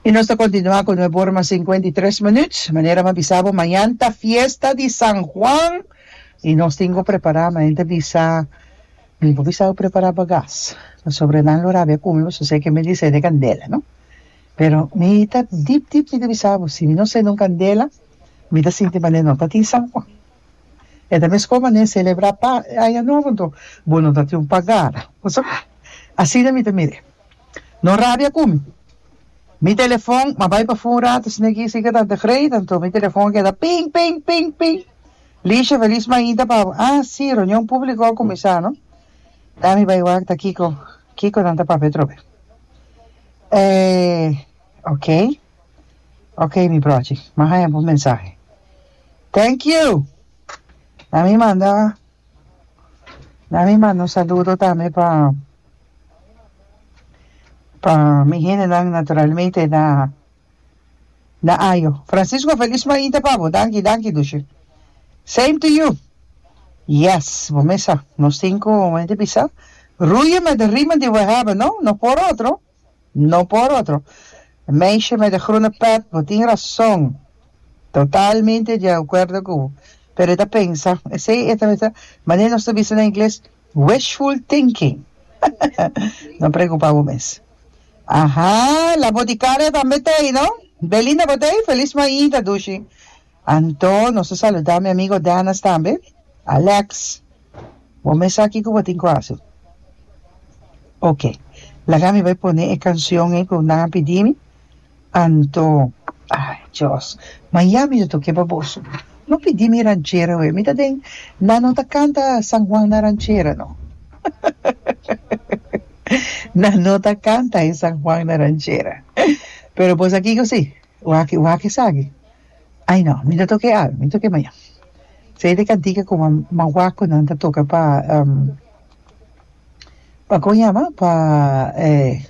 I nos ta kontinuá ku nuevo ora mas sinkuenta i tres minuut. Manera mi a bisa bo, mañan ta fiesta di San Juan i nos tin ku prepará. Mi a henter bisa mi por bisa bo prepará bagas pasobra nan lo rabia ku mi pasobra esei ke mi a disende kandela, no. Pero mi ta dip dip mi ta bisa bo, si mi no sende un kandela mi ta sinti manera no tatin San Juan. E ta mescó mané celebra pa Aña Nobo anto bo no ta tin un pagada. Bo sa cu asina mi ta mir'é. No rabia cu mi. Mi telefon m'a bai p'afó un rato si n'e guis sica tanta greita anto mi telefon a keda ping ping ping ping. Licia, Feliz mainta pa bo. Ah si, reunion publico a cuminsá no. Dá mi bai wak ta Kiko. Kiko nan ta pap'é trobe. Eh, ok. Ok mi brochi m'a haña bo mensahe. Thank you. Na mi manda na mi manda un saludo tambe pa pa mi hendenan naturalmente na na ayo. Francisco felis mainta pa bo. Danki danki dushi. Same to you. Yes bo mes sa nos tin cu mende bisa ruye mende rima di we hebben no no por otro. No por otro. Meisje met e groene pet, bo tin rason. Totalmente di acuerdo cu bo. Pero e ta pensa. Esey e ta mester, manera nos ta bisa na ingles, wishful thinking. No preocupa bo mes. Aha, la boticaria tambe t'ey, no? Belinda bo t'ey? Feliz Mayi ta dushi. Anto nos ta saluda mi amigo Dennis tambe. Alex, bo mes sa kico bo tin cu haci. Ok, laga mi bai pone e cancion ey cu nan a pidi mi. Anto, ay Dios, ma ya mi ta toke pa boso. No pidi mi ranchera awe. Mi ta den, nan no ta canta San Juan na ranchera no. Nan no ta canta e San Juan na ranchera. Pero bo sa kico si? Wak, wak esaki. Ai no, mi ta toka e alma, mi ta toka e maña. Feita e cantica cu mawacunan ta toca pa, um, pa con a yama? Pa, eh.